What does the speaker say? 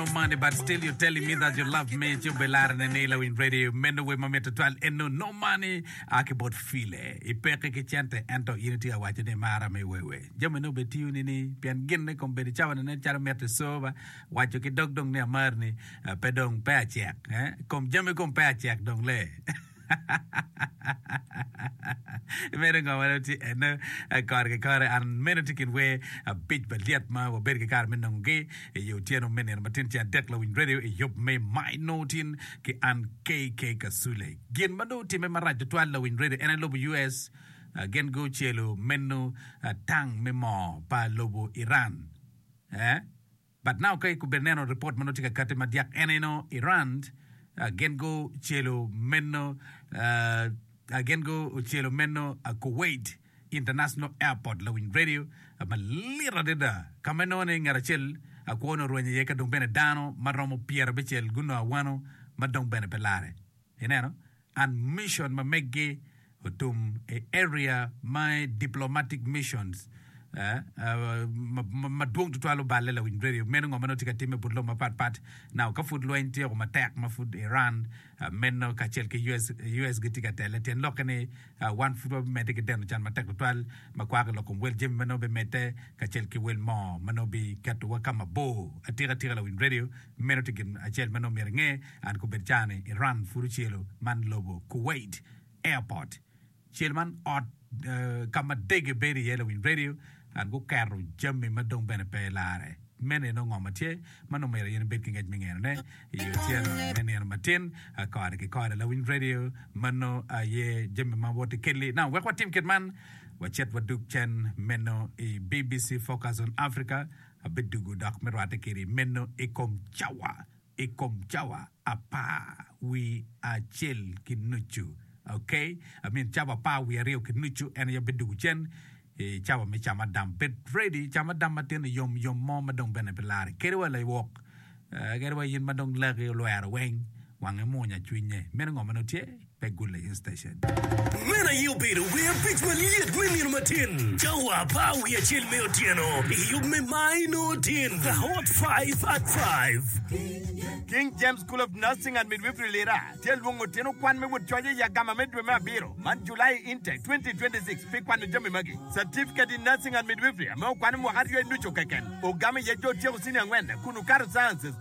no money but still you telling me that you love me ci obelare ne ni lawiny radio meno wer mamit tutwal eno no money a ki bot file i peke ki cente ento in itye awaco ni imara me wewe jami ne obe tiyo ni ni pien gin ne kom bedo cawa ne calo mito i soba waco ki dog dong ni amar ni pe dong pe acek eh kom jami kom pe acek dong le Meno ngo ma dong tye ene kore ki kore? An, meno tye kin wer abic malyet ma wabedo ki kare me nongogi i otyeno me nino matin tye adek lawiny redio i yub me My Notin ki an KK Kasule. Gin ma dong otimme marac tutwal lawiny redio en aye lobo US gin gucelo meno tang me moo pa lobo Iran. But now ka ikubo ineno report manongo tye ka kati madyak en aye nongo Iran gin gu celo meno ah gin gu celo meno Kuwait international airport lawiny radio malit adada ka ma inongo ni ngat acel kwo ni orwenyo iye ka dong bene dano maromo pyerabicel gunongo awano ma dong bene pe lare ineno and mission ma meggi otum i area ma i diplomatic missions ma dwong tutwal oballe lawiny radio meno ngo ma nongo tye ka timme but lobo mapat pat now ka pud lweny tyeko matek ma pud Iran meno kacel ki US gitye ka tele tyen lokke ni wan pud wabimedde ki deno can matek tutwal ma kwako lok kom wel jami ma nongo bimedde kacel ki wel moo ma nongo biketowa ka mabor atika tika lawiny radio Meno tye gin acel ma nongo myero inge, and kubed cawa ni Iran pud ocelo man lobo Kuwait airport cel man ot ka ma dege bedo iye lawiny radio and guketo jami ma dong bene pe larre. Meno aye nongo ngo ma tye ma nongo myero in ibed ki ngec me ngeno ne i otyeno me nino matin kore ki kore lawiny radio mano aye jami ma woti keli now wek watim kit man wacit wadug cen meno i BBC Focus on Africa. Abidugo dok me rwatte kede meno i kom cawa, i kom cawa apar wii acel ki nucu. Ok, I mean cawa apar wii aryo ki nucu en aye bidugo cen i cawa me camadam. Bed ready, camadam matin i yom yom mo ma dong bene pe larre kede wa lawok, kede wa in ma dong laki olwero weng. Wange munya cwinye. Meno ngo ma nongo tye? Pe gulle in station. Meno aye obedo wer abic ma lyet me nino matin cawa apar wiye acel me otyeno i yub me May nongo tin The Hot Five at Five. King James School of Nursing and Midwifery Lira tye lwongo tino kwan me wot coc i agama me dwe me abiro man, July Intake 2026, pi kwano jami magi. Certificate in Nursing and Midwifery ame okwano mwaka aryo i nucu keken. Ogamo iye jo otyeko Senior angwen kun okato Sciences,